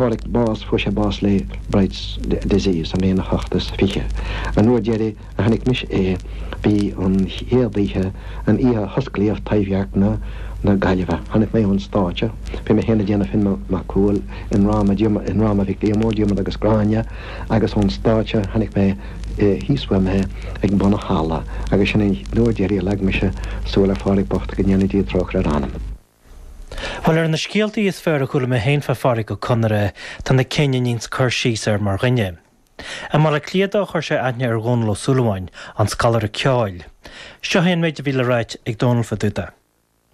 Pádraic bás Fuair sé bás le Bright's disease sa mbliain a hocht is fiche. An uair deiridh a chonaic mise é b'í an chéad oíche, an oíche a hosclaíodh Taibhdhearc na na Gaillimhe. Chonaic mé ón stáitse, bhí mé féin ag déanamh Finn Mac Cumhaill i ndráma Diarmuid i ndráma Mhic Liammóir, Diarmuid agus Gráinne, agus ón stáitse chonaic mé thíos uaim é ag bun an halla agus sin an uair deiridh a leag mise súil ar Phádraic bocht, go ndéana Dia trócaire ar a anam. Bhuel, ar na scéaltaí is fearr a chuala mé féin fá Phádraic Ó Conaire, tá na cinn a níonns cur síos air mar dhuine. I mBaile Átha Cliath dó, chuir sé aithne ar Dhónall Ó Súilleabháin, an scoláire ceoil. Seo é an méid a bhí le ráit ag Dónall fá dtaobh dó.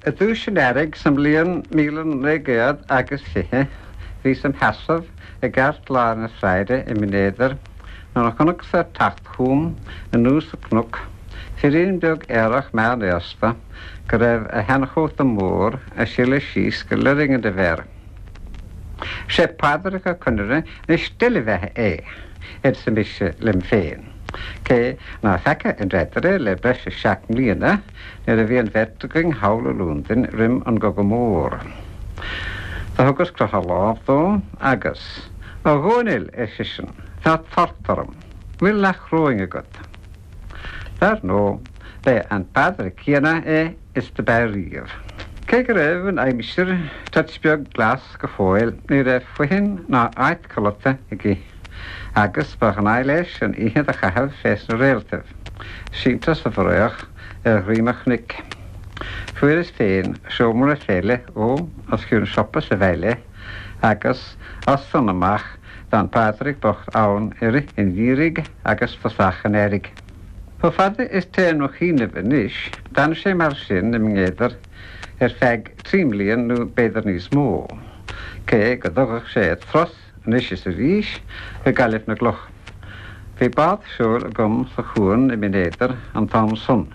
I dtús an earraigh sa mbliain míle naoi gcéad agus fiche, bhíos im sheasamh i gceartlár na sráide i mBinn Éadair Nuair a chonacas ag teacht chugam anuas an cnoc, firín beag aerach meánaosta go raibh a sheanchóta mór ag sileadh síos go loirgne air. A Mhuire, sé Pádraic Ó Conaire na steillebheatha é! arsa mise liom féin, cé ná feaca an ridire le breis is seacht mbliana, nuair a bhí an bheirt againn thall i Lúndain roim an gCogadh Mór. Do thugas crothadh lámh dó agus, A Dhomhnaill! ar seisean. Tá tart orm. Bhfuil leathchoróin agat? Dar ndóigh, b'é an Pádraig céanna é is do b'ea riamh. Cé go raibh an aimsir toit beag glas go fóill, ní raibh foithin ná áit codlata aige, agus ba ghnáth leis an oíche do chaitheamh fé sna réaltaibh, sínte sa bhfraoch ar dhroim an chnoic. Fuaireas féin seomra fé leith dhó os cionn siopa sa bhaile, agus as san amach, D'fhan Pádraic bocht ann i rith an gheimhridh agus tosach an earraigh. Chomh fada is téann mo chuimhneamh anois, d'fhan sé mar sin i mBinn Éadair ar feadh trí mblian nó b'fhéidir níos mó, cé go dtugadh sé turas anois is arís go Gaillimh na gCloch. Bhí bád seoil agam sa chuan i mBinn Éadair an t-am san.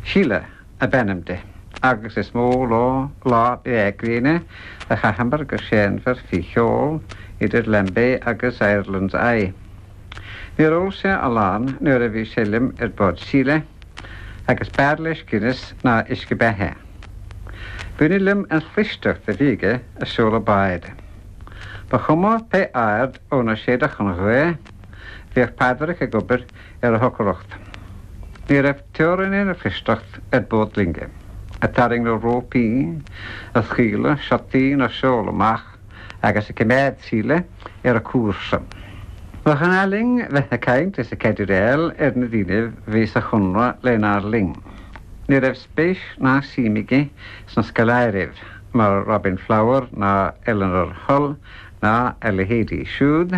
Síle. ab ainm di, agus is mó lá lá gréine a chaitheamar go séanmhar faoi sheol idir Lambay agus Ireland's Eye. Níor ól sé a lán nuair a bhí sé liom ar bord Síle, agus b'fhearr leis Guinness ná uisce beatha. B'ionadh liom an chlisteacht a bhí aige ag seoladh báid. Ba chuma pé aird óna séideadh an ghaoth. Bhíodh Pádraic ag obair ar a shocracht. Ní raibh teorainn lena chlisteacht ar bord loinge, ag tarraing na rópaí, ag scaoileadh siotaí na seol amach agus ag coimeád Síle ar a cúrsa. Ba ghnáth linn bheith ag caint is ag caidireáil ar na daoine bhí sa Chonradh lenár linn. Ní raibh spéis ná suim aige sna scoláiribh mar Robin Flower ná Eleanor Hull ná a leithéidí siúd.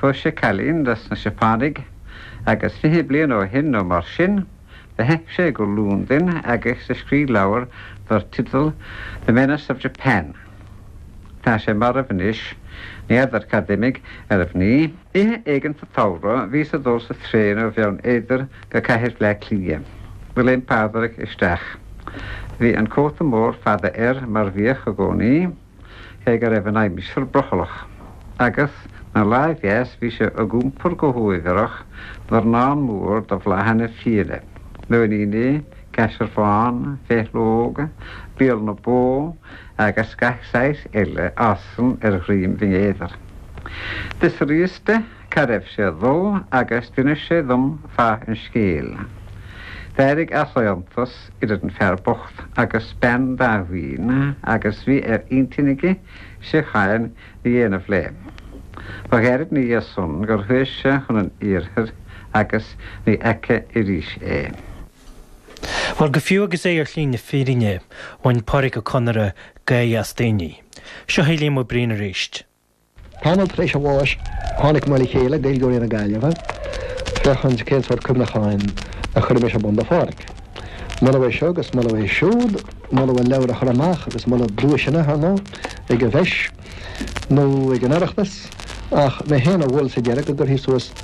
Phós sé cailín dos na Seapánaigh agus fiche bliain ó shin nó mar sin do theith sé go Lúndain agus do scrígh leabhar dar teideal The Menace of Japan. Tá sé marbh anois. Ní fheadar cad d'imigh ar a mhnaoi. Oíche éigin sa tsamhradh bhíos ag dul sa traein ó Bheann Éadair go Cathair Bhleá Cliath. Do léim Pádraic isteach. Bhí an cóta mór fada air mar bhíodh i gcónaí. cé go raibh an aimsir brothallach, agus, ina láimh dheas, bhí sé ag iompar go huaibhreach dornán mór de bhláthanna fiáine, nóiníní, caisearbhán, féithleog, béal na bó agus gach saghas eile a fhásann ar dhroim Bhinn Éadair. D'fhiosraíos de. Cá raibh sé ag dul agus d'inis sé dhom fáth an scéil. D'éirigh easaontas idir an fear bocht agus bean Dháibhín agus bhí ar intinn aige síocháin a dhéanamh léi. Ba ghearr ina dhiaidh san gur chuaigh sé chun an iarthair agus ní fheaca arís é. Bhuel, go fiú agus é ar shlí na fírinne, bhain Pádraic Ó Conaire gáire as daoine. Seo é Liam Ó Briain arís. Tamall tar éis a bháis, tháinig muid le chéile, Gaeilgeoirí na Gaillimhe, féachaint cén sórt cuimhneacháin a chuirfimis ar bun do Pháraic. Moladh é seo agus moladh é siúd, moladh a leabhar a chur amach agus moladh duaiseanna, ar ndóigh, ag an bhFeis nó ag an Oireachtas, ach mé féin a mhol sa deireadh go gcuirfí suas